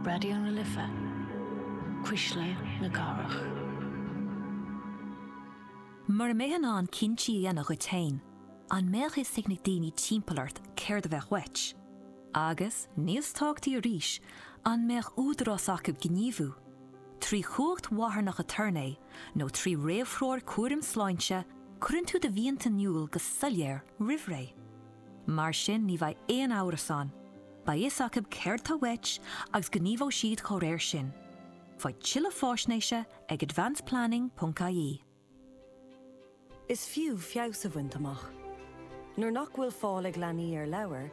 Raidió na Life, Cuisle na Cathrach. Mura mbeifeá in ann cinntí a dhéanamh duit féin, an mbeadh fhios ag na daoine timpeall ort céard a bheadh uait? Agus, níos tábhachtaí arís, an mbeadh údarás acu gníomhú, trí chumhacht mharthanach aturnae nó trí réamhthreoir cúraim sláinte, cuireann tú do mhianta in iúl go soiléir roimh ré. Mar sin ní bheidh aon amhras ann, beidh fhios acu céard tá uait agus gníomhóidh siad dá réir sin. Faigh tuilleadh faisnéise ag advanceplanning.ie. Is fiú feabhas a bhaint amach. Nuair nach bhfuil fáil ag leanaí ar leabhair,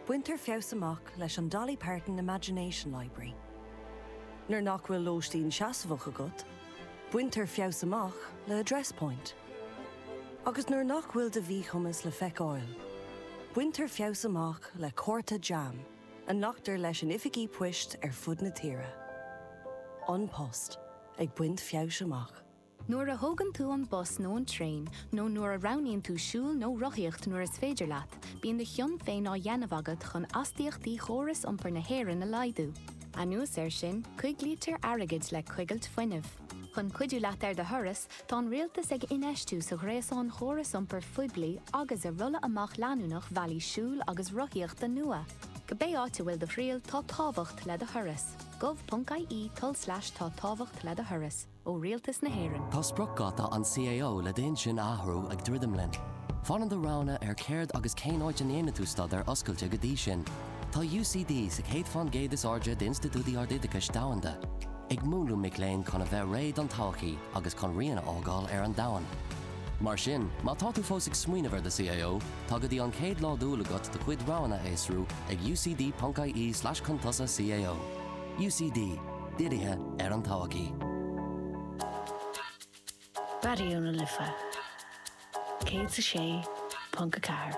baintear feabhas amach leis an Dolly Parton Imagination Library. Nuair nach bhfuil lóistín seasmhach agat, baintear feabhas amach le Address Point. Agus nuair nach bhfuil do mhíchumas le feiceáil, baintear feabhas amach le cárta JAM a nglactar leis in oifigí poist ar fud na tíre. An Post ag baint feabhais amach. Nuair a thógann tú an bus nó an traein, nó nuair a roghnaíonn tú siúl nó rothaíocht nuair is féidir leat, bíonn do chion féin á dhéanamh agat chun astaíochtaí chóras iompair na hÉireann a laghdú. Anuas air sin, coiglítear airgead le coigilt fuinnimh. Chun cuidiú leat ar do thuras, tá an Rialtas ag infheistiú sa ghréasán chóras iompair phoiblí agus i rolladh amach leanúnach bhealaí siúil agus rothaíochta nua. Cibé áit a bhfuil do thriall, tá tábhacht le do thuras. gov.ie tulslais tá tábhacht le do thuras. Ó Rialtas na hÉireann. Tá spriocdháta an CAO le d'intinn a athrú ag druidim linn. Fanann do roghanna ar céard agus cén áit a ndéanann tú staidéar oscailte go dtí sin. Tá UCD sa chéad faoin gcéad is airde d'institiúidí ardoideachais domhanda, ag múnlú mic léinn chun a bheith réidh don todhchaí agus chun rian a fhágáil ar an domhan. Mar sin, má tá tú fós ag smaoineamh ar do CAO, tá go dtí an chéad lá d'Iúil agat do chuid roghanna a fhiosrú ag ucd.ie/chuntosacao. UCD, dírithe ar an todhchaí. Raidió na Life 106.4.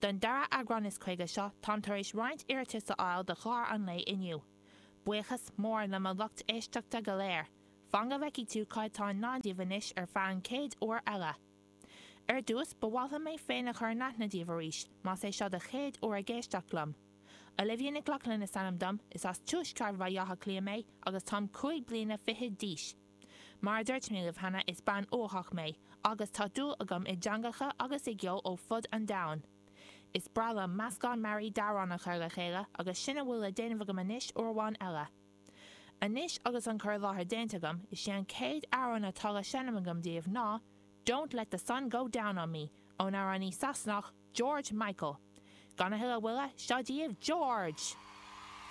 Don dara eagrán is caoga seo, táim tar éis roinnt iarratais a fháil do chlár an lae inniu. Buíochas mór le mo lucht éisteachta go léir. Fan go bhfeicfidh tú cad atá i ndán daoibh anois ar feadh an chéad uair eile. Ar dtús, ba mhaith liom mé féin a chur in aithne daoibh arís, más é seo do chéad uair ag éisteacht liom. Olivia Nic Lochlainn is ainm dom, is as Tuaisceart Bhaile Átha Cliath mé agus táim cúig bliana fichead d'aois. Mar a dúirt mé libh cheana, is bean uathach mé, agus tá dúil agam i dteangacha agus i gceol ó fud an domhain. Is breá liom meascán mearaí d'amhráin a chur le chéile, agus sin a bhfuil le déanamh agam anois uair amháin eile. Anois agus an cur i láthair déanta agam, is é an chéad amhrán atá le seinm agam daoibh ná Don't Let the Sun Go Down on Me, ón amhránaí Sasanach George Michael. Gan a thuilleadh moille, seo daoibh George!